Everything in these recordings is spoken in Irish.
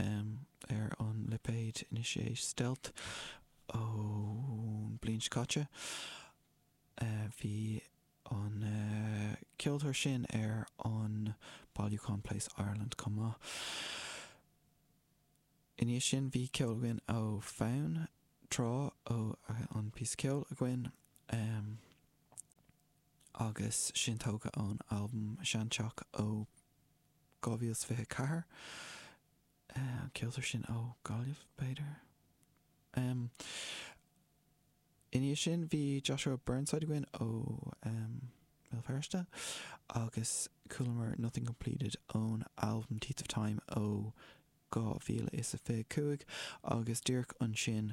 ainm ar an lipéid anois é Stealth ón bhliain seo caite. Bhí an ceoltóir sin ar an bailiúchán Place Ireland chomh maith. I ndiaidh sin bhí ceol againn ó Fonn, Tráth an píosa ceoil againn agus sin tógtha ón albam Seanteach ó 2024. An ceoltóir sin ó Ghaillimh, b'fhéidir? Ina dhiaidh sin bhí Joshua Burnside againn ó Bhéal Feirste agus chualamar Nothing Completed ón albam Teeth of Time ó 2025 agus díreach ansin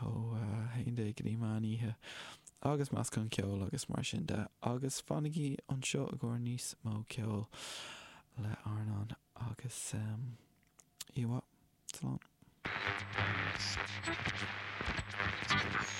ó a haon déag go dtí meán oíche, agus meascán ceoil agus mar sin de. Agus fanaigí anseo i gcomhair níos mó ceoil le RnaG agus Iomhá. Slán.